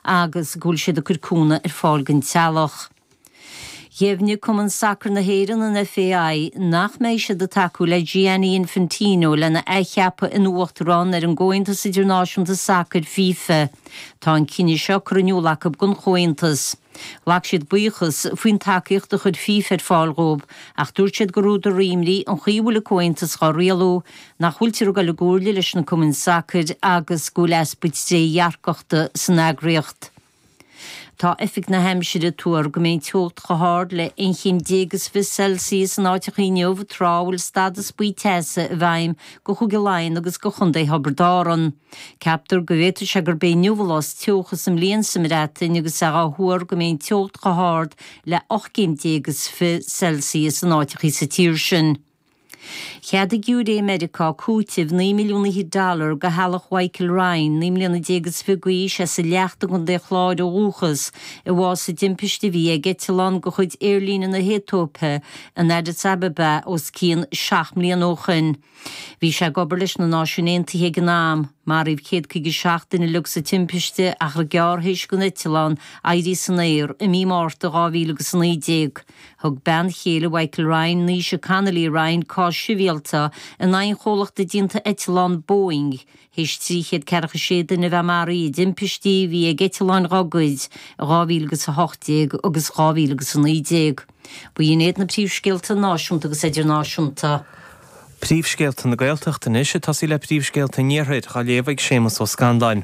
agus go bhfuil siad ag cur cúnamh ar fáil don teaghlach. Dheimhnigh Cumann Sacair na hÉireann, an FAI, nach mbeidh siad ag tacú le Gianni Infantino lena athcheapadh ina Uachtarán ar an gComhaontas Idirnáisiúnta Sacair, fifa. Tá an cinneadh seo curtha in iúl acu don Chomhaontas. Ghlac siad buíochas faoin tacaíocht a chuir fifa ar fáil dhóibh ach dúirt siad gur údar imní an chaoi a bhfuil an Comhaontas dhá rialú nach bhfuiltear ag dul i gcomhairle leis na cumainn sacair agus go bhfuil easpa trédhearcachta san eagraíocht. Tá oifig na haimsire ag tuar go mbeidh an teocht chomh hard le 11 chéim is fiche Celsius in áiteacha inniu tráth a bhfuil stádas buí teasa i bhfeidhm do Chúige Laighean agus do Chontae Thiobraid Árann. Ceaptar go bhféadfadh sé gurb é inniu an lá is teocha sa mbliain sa mBreatain agus é á thuar go mbeidh an teocht chomh hard le 18 céim is fiche Celsius in áiteacha sa tír sin. Cheadaigh giúiré i Meiriceá cúiteamh naoi milliún fichead dollar do theaghlach Mhichael Ryan, naoi mbliana déag is fiche d'aois, as an Leacht i gContae an Chláir ó dhúchas, a bhásaigh i dtimpiste a bhí ag eitleán de chuid Aerlíne na hAetóipe in Addis Ababa os cionn seacht mbliana ó shin. Bhí sé ag obair leis na Náisiúin Aontaithe ag an am. Maraíodh céad caoga is seacht duine uilig sa timpiste achar gearr théis don eitleán éirí san aer, i mí Márta 2019. Thug bean chéile Mhichael Ryan, Naoise Connolly Ryan, cás sibhialta in aghaidh an chomhlachta déanta eitleán Boeing théis trí chéad ceathracha is sé duine a bheith maraithe i dtimpistí a bhí ag eitleáin dhá gcuid i 2018 agus 2019. B'in iad na príomhscéalta náisiúnta agus idirnáisiúnta. Príomhscéalta na Gaeltachta anois ag tosaí le príomhscéalta an Iarthair, á léamh ag Séamus Ó Scanláin.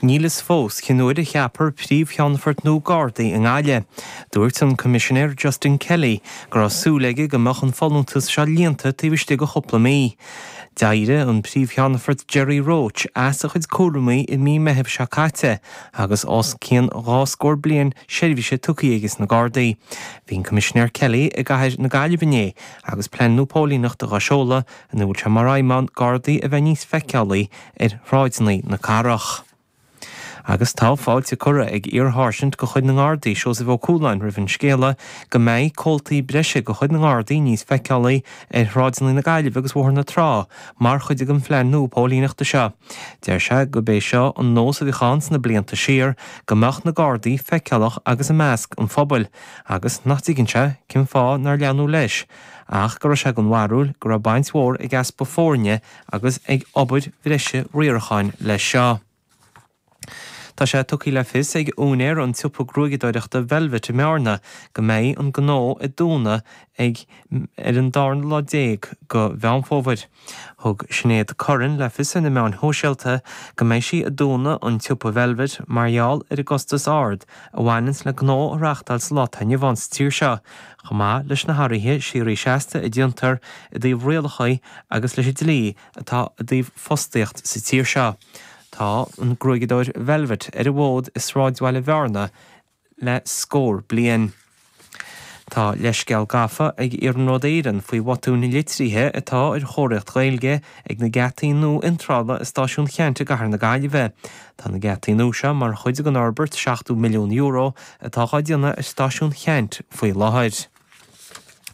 Níl fhios fós cén uair a cheapfar Príomh-Cheannfort nua Gardaí i nGaillimh. Dúirt an Coimisinéir Justin Kelly go raibh súil aige go mbeadh an folúntas seo líonta taobh istigh de chúpla mí. D'éirigh an Príomh-Cheannfort Gerry Roche as a chuid cúramaí i mí Meithimh seo caite agus os cionn dhá scór bliain seirbhíse tugtha aige sna Gardaí. Bhí an Coimisinéir Kelly i gcathair na Gaillimhe inné agus plean nua póilíneachta á sheoladh ina bhfuil sé mar aidhm ann Gardaí a bheith níos feiceálaí ar shráideanna na cathrach. Agus tá fáilte curtha ag iarSháirsint de chuid na nGardaí, Seosamh Ó Cualáin, roimh an scéala go mbeidh comhaltaí breise de chuid na nGardaí níos feiceálaí ar shráideanna na Gaillimhe agus Bhóthar na Trá mar chuid den phlean nua póilíneachta seo. Deir sé go b'é seo an nós a bhíodh ann sna blianta siar, go mbeadh na Gardaí feiceálach agus i measc an phobail, agus nach dtuigeann sé cén fáth nár leanadh leis ach go raibh sé den bharúil go raibh baint mhór ag easpa foirne agus ag obair bhreise riaracháin leis seo. Tá sé tugtha le fios ag úinéir an tsiopa gruaigeadóireachta Velvet i mBearna go mbeidh an gnó ag dúnadh ar an darna lá déag de Mheán Fómhair. Thug Sinéad Curran le fios ar na meáin shóisialta go mbeidh sí ag dúnadh an tsiopa Velvet mar gheall ar an gcostas ard a bhaineann le gnó a reáchtáil sa lá atá inniu ann sa tír seo, chomh maith leis na hathruithe síoraí seasta a déantar i dtaobh rialacha agus leis an dlí atá i dtaobh fostaíocht sa tír seo. Tá an gruaigeadóir Velvet ar an bhfód i sráidbhaile Bhearna le scór bliain. Tá leithscéal gafa ag Iarnród Éireann faoi bhotún litrithe atá ar chomharthaíocht Ghaeilge ag na geataí nua iontrála i Stáisiún Cheannt i gCathair na Gaillimhe. Tá na geataí nua seo mar chuid den fhorbairt €70 milliún atá á déanamh ar Stáisiún Cheannt faoi láthair.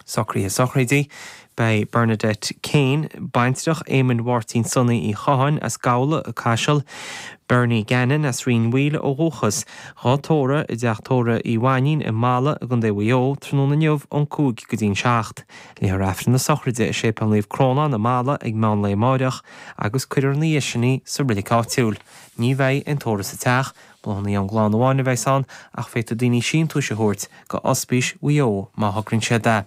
Socruithe Sochraide, Beidh Bernadette Kane, baintreach Éamoinn Mháirtín Sonaí Uí Chatháin as Gabhla, Caiseal, Bernie Gannon as Rinn Mhaoile ó dhúchas, dhá tórramh i dteach tórraimh Uí Mhainnín i mBalla i gContae Mhaigh Eo, tráthnóna inniu ón 5 go dtí'n 7. Léifear Aifreann na sochraide i Séipéal Naomh Crónán i mBalla ag meán lae amáireach agus cuirfear ina dhiaidh sin í sa reilig áitiúil. Ní bheidh aon tórramh sa teach Bláthanna ón gclann amháin a bheas ann ach féadfaidh daoine síntiúis a thabhairt go Ospís Mhaigh Eo má thograíonn siad é.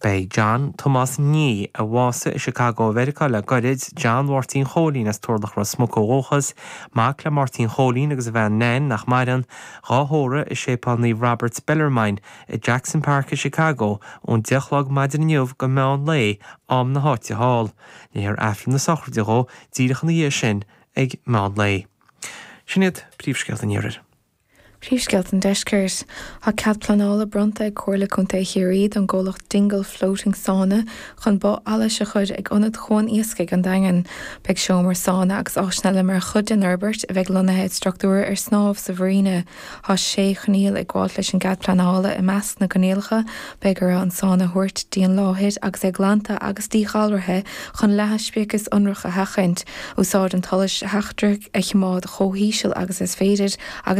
Beidh John Tomás Nee, a bhásaigh i Chicago i Meiriceá le gairid, John Mháirtín Chóilín as Turlach Ros Muc ó dhúchas, mac le Máirtín Chóilín agus a bhean Nain, nach maireann, dhá thórramh i Séipéal Naomh Robert Bellarmine i Jackson Park i Chicago ón deich a chlog maidin inniu go meán lae am na háite thall. Léifear aifreann na sochraide dhó díreach ina dhiaidh sin ag meán lae. Sin iad príomhscéalta an iarthair. Príomhscéalta an deiscirt. Tá cead pleanála bronnta ag Comhairle Contae Chiarraí don gcomhlacht Dingle Floating Sauna chun both allais a chur ag Ionad Chuan Iascaigh an Daingin. Beidh seomra sána agus áiseanna eile mar chuid den fhorbairt a bheidh lonnaithe i structúr ar snámh sa mharina. Tá sé choinníoll ag gabháilt leis an gcead pleanála, i measc na gcoinníollacha, beidh orthu an sáinn a thabhairt dtí an láthair agus é glanta agus díghalraithe chun leathadh speicis ionrach a sheachaint, úsáid an tsolais sheachtraigh a chimeád chomh híseal agus is féidir, agus.